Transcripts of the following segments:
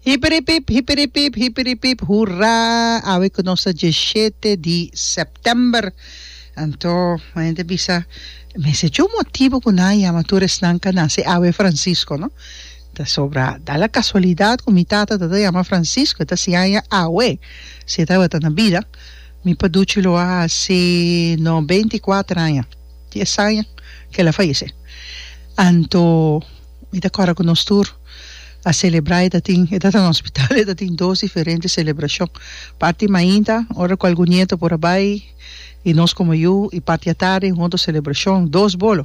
Hipiripip, hipiripip, hipiripip, hurá! Awe ku nos ta dieshete di sèptèmber. Anto mi hende bisa, mester cu un motibu ku nan a yama tur esnan ka na se awe Francisco, no? Ta sobra da la kasualidat ku mi tata tabata yama Francisco, e ta siña aña awe si e tabata na bida. Mi paduchi lo a hasi no beinti kuater aña, di esaña ku el a fayesé. Anto mi ta kòrda ku nos tur a selebrá, e ta tin, e ta ta na hospital, e ta tin dos diferente selebrashon, parti mainta, ora ku algun nieto por a bai i nos komo yu, i parti atardi un otro selebrashon, dos bolo,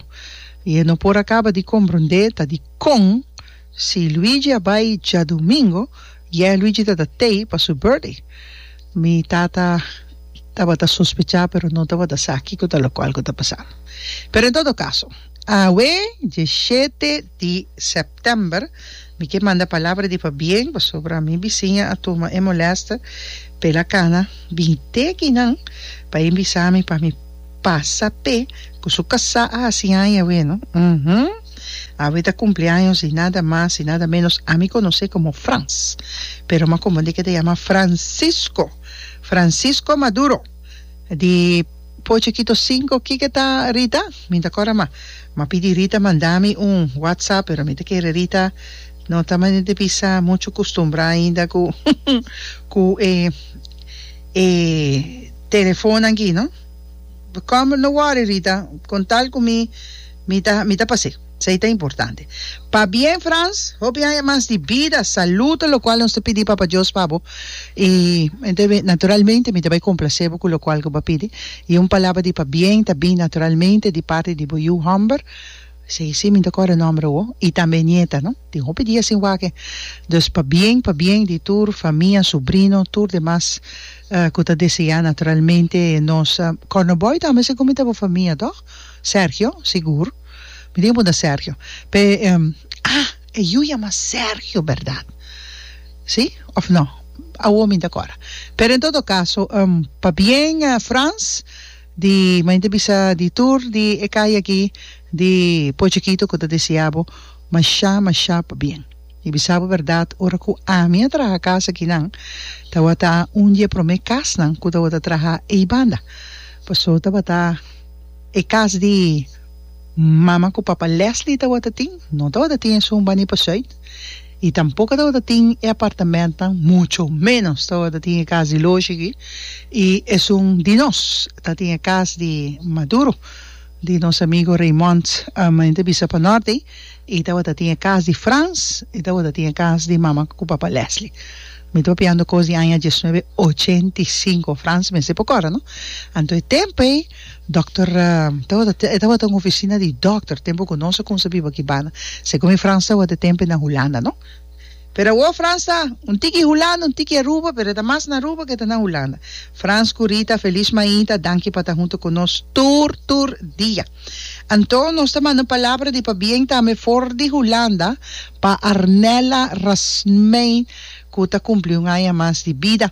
i e no por a kaba di komprondé ta dikon. Si Luigi a bai djadumingo, yeah Luigi ta ta tei pa su birthday. Mi tata tabata sospechá pero no tabata sa kiko ta locual cu ta pasando. Pero en todo caso, awe dieshete di september mi ke manda palabra di pabien pasobra mi bisiña a tuma e molester pela cana bin teki nan pa e bisa mi pa mi pasa p'e cu su casá a haci aña awe no. Uhmm. Awe ta cumpleaños di nada mas y nada menos a mi conoce como Frans, pero m'a confunde que ta yama Francisco, Francisco Maduro di Poce Quito Cinco, kico ta Rita? Mi ta cora ma m'a pidi Rita manda mi un WhatsApp pero mi ta kere Rita no ta manera di bisa mucho custumbra ainda cu cu e e telefonan aki no, come no worry Rita con tal cu mi Mi ta mi ta pas'é. S'ei ta importante. Pabien, Frans, hopi aña mas di bida, salud, locual nos ta pidi Papa Dios pa bo. I entendi, naturalmente mi ta bai complacé bo cu locual cu bo a pidi. I un palabra di pabien ta bin naturalmente di parti di bo yu Humber, si si mi no ta core nomber awo, i tambe nieta, no? Tin hopi dia sin wak-e. Dus pabien, pabien di tur famia, subrino, tur demas cu ta deseá naturalmente nos Cornoboi tambe segun mi ta bo famia, tog? Sergio, Sigur. Mi tin ke punta Sergio. P'e, Ah! E yu yama Sergio bèrdat? Si òf nò? Awor mi ta kòrda. Pero en todo kaso, pabien Frans, di mañana ta bisa di tur di e kaya aki di Pochekito ku ta deseá bo mashá, mashá pabien. Mi bisa bo bèrdat, ora ku ami a traha kas akinan, tabata un di e promé kasnan ku tabata traha ei banda. Pasó tabata. e cas di mama cu papa Leslie tabata tin no tabata tin esun bani pa Zuid y tampoco tabata tin e apartamentnan mucho menos tabata tin e cas di loge aki y esun di nos ta tin e cas di Maduro di nos amigo Raymond men ta bisa pa Norte y tabata tin e cas di Frans y tabata tin e cas di mama cu papa Leslie. Mi tropiando cos di aña diesnuebe ochenta i sinku, Frans mester por cora, no? Anto e tempo ey, dokter, tawata, e tawata un oficina di dokter, tempo cu nos a cuminsa biba aki banda, segun mi Frans tawata e tempo ey na Hulanda, no? Pero awo Frans ta un tiki Hulanda, un tiki Aruba, pero e ta mas na Aruba cu e ta na Hulanda. Frans cu Rita, Feliz Mahinta, danki pa ta hunto cu nos tur, tur dia. Anto nos ta manda un palabra di pabien tambe for di Hulanda pa Arnella Rasmijn cu ta cumpli un aña mas di bida.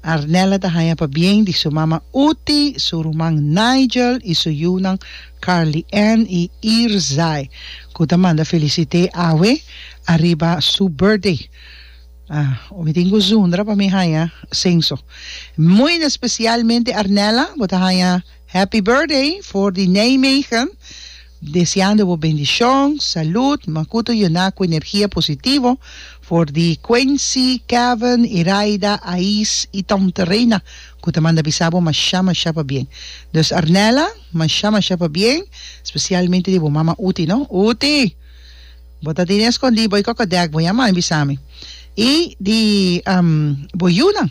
Arnella ta haña pabien di su mama Uti, su ruman Nigel y su yunan Carly-Ann y Irzai cu ta manda felicite awe ariba su birthday. Ah, mi tin cu zundra pa mi haña censo. Muy na specialmente Arnella, bo ta haña. Happy birthday for di Nijmegen, deseando bo bendicion, salud, makuto yona cu energia positivo, for di Quincy, Kevin, Iraida, Ais y Tante Reina cu ta manda bisa bo masha masha pabien. Dus Arnella, masha masha pabien, specialmente di bo mama Uti no. Uti! Bo ta tene escondi bo y coco dek bo ya man bisa mi. Y di bo yunan.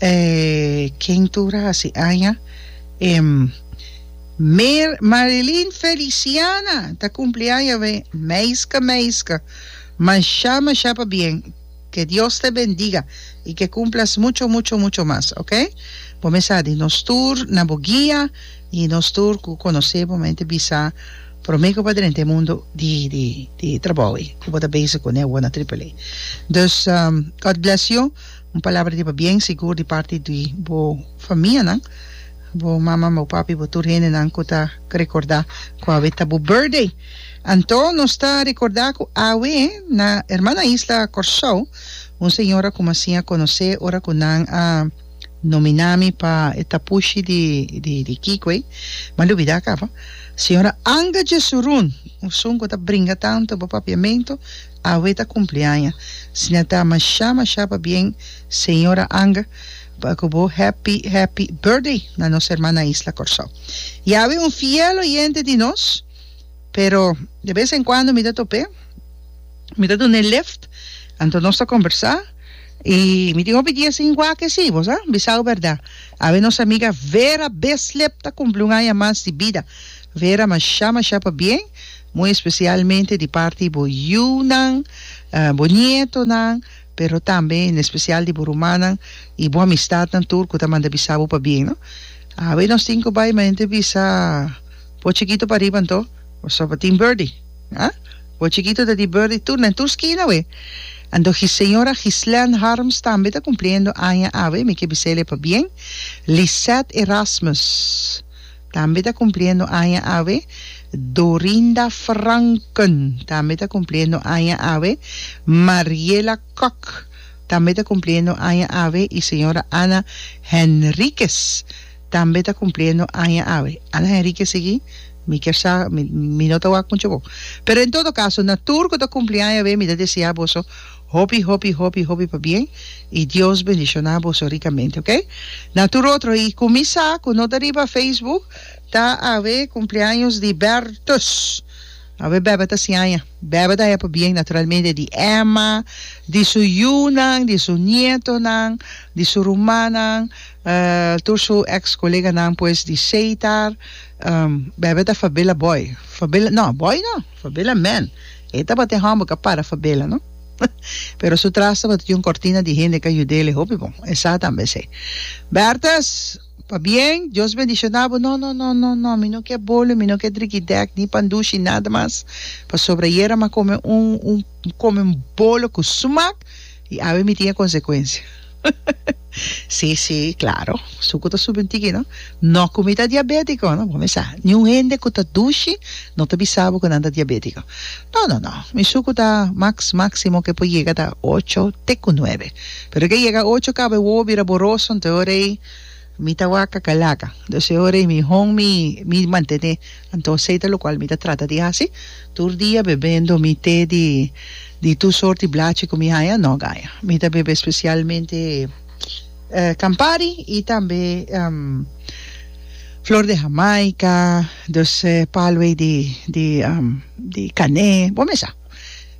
e kentura hasi aña e Mer Marilyn Feliciana ta cumpli aña we meiska meiska masha masha pa bien ke Dios te bendiga y ke cumplas mucho mucho mucho mas ok bo mes sa di nos tur na bo guia y nos tur cu conoce bo mente bisa prome cu bo ta drenta e mundo di di di trabou y cu bo ta bezig cu ne awor na Triple A dus God bless you. Un palabra riba bien sigur di parti di bo famianan, bo maman, bo papi, bo tur hendenan cu ta recorda cu awe ta bo birthday. Anto nos ta recorda cu awe na hermana isla Corsou un señora cu masin a conoce ora cu nan a nomina mi pa e tapushi di di Kico ey, m'a lubida caba, señora Anga Jesurun, un sun cu ta bringa tanto bo papiamento. Awe ta kumpliaña sina ta masha masha pabien señora Anga pa ku bo happy happy birthday na nos herman na isla Kòrsou i awe un fiel oyente di nos pero de bes en kuando mi ta top'é mi ta dun'é lift anto nos ta kombersá i mi tin hopi dia sin wak e si bo sa bisau bèrdat awe nos amiga Vera Besleb ta kumpli un aña mas di bida Vera masha masha pabien. Muy especialmente di parti bo yiunan, bo nietonan, pero tambe en especial di bo rumannan y bo amistadnan tur cu ta manda bisa bo pa bien, no. Awe nos tin cu bay ma henter bisa bo chikito pariba anto pasobra tin Birdie, ha? Bo chikito ta di Birdie tur na tur skina awe. Anto señora Gislène Harms tambe ta cumpliendo aña awe, mi ke bisele pa bien. Lisette Erasmus. tambe ta cumpliendo aña awe, Dorinda Franken tambe ta cumpliendo aña awe, Mariela Kok tambe ta cumpliendo aña awe y señora Ana Henriquez tambe ta cumpliendo aña awe. Ana Henriquez sigui mi kier sa mi no ta wak mucho bo pero en todo caso na tur cu ta cumpli aña awe mi ta deseá boso Hopi hopi hopi hopi pa bien y Dios bendiciona boso ricamente ok. Na tur otro y cu mi sa cu no ta riba Facebook ta awe cumpleaños di Bertus awe bebe ta siaña bebe ta haya pa bien naturalmente di Emma di su yu nan di su nietonan di su rumannan tur su ex coleganan pues di Seitar bebe ta fabela boy fabela no boy no. Fabela man, e tabatin humble ka para Fabela no. Pero su tras tabatin di un cortina di hende ka yud'el e hopi bon, e sa tambe esei. Bertus, Pabien, Dios bendiciona bo, no, no, no, no, no, mi no ke bolo, mi no ke drikidèk, ni pan dushi, nada mas, pasobra ayera mi a kome un, un, mi kome un bolo ku sumak, Y awe mi tin e consecuencia. Si, si, claro, sucu ta subi un tiki, no? No cu mi ta diabetico, no? Bo me sa, ni un hende cu ta dushi no ta bisa bo cu nan ta diabetico. No, no, no, mi sucu ta max, maximo cu e por yega ta ocho te cu nuebe. Pero cu e yega ocho caba e wowo bira boroso, entonces e ora ey mi ta wak cacalaca. Entonces e ora ey mi hon mi, mi mantene. Anto esei ta lokual mi ta trata di hasi tur dia bebendo mi te di di tur sort di blachi ku mi haña no gaña. Mi ta bebe spesialmente Campari i tambe flor de Jamaica, dus palwei di di di kané, bo me sa.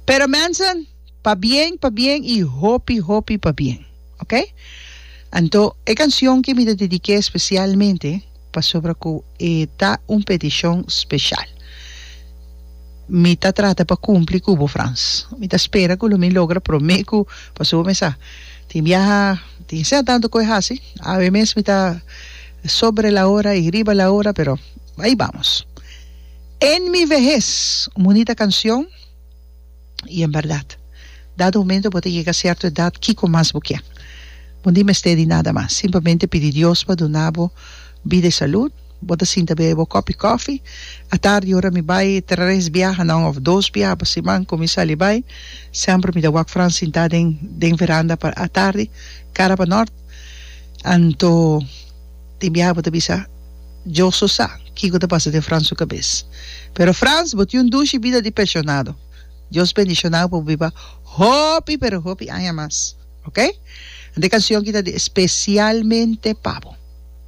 Pero mensen pa bien pa bien i hopi hopi pa bien. Ok. Anto e cancion ki mi ta dedique specialmente pasobra cu e ta un peticion special. Mi ta trata pa cumpli cu bo Frans. Mi ta spera cu lo mi logra prome cu pasobra bo me sa tin biaha tin sea tanto cu e haci awe mes mi ta sobre la hora y riba la hora pero ahí vamos. En mi vejez un bunita cancion. y en berdad dado momento bo ta yega cierto edad kico mas bo kier bo ni mester di nada mas simplemente pidi Dios pa duna bo bida y salud bo ta sinta bebe bo copi cofi atardi ora mi bay tres biaha nan of dos biaha pa siman cu mi sali bay semper mi ta wak Frans sinta den den veranda pa atardi cara pa nort anto Tin biaha bo ta bisa, Yo so sa kiko ta pasa den Frans su kabes. Pero Frans, bo tin un dushi bida di penshonado. Dios bendishonáu pa bo biba hopi pero hopi aña mas. Oke? Ante e kanshon aki ta di espesialmente pa bo.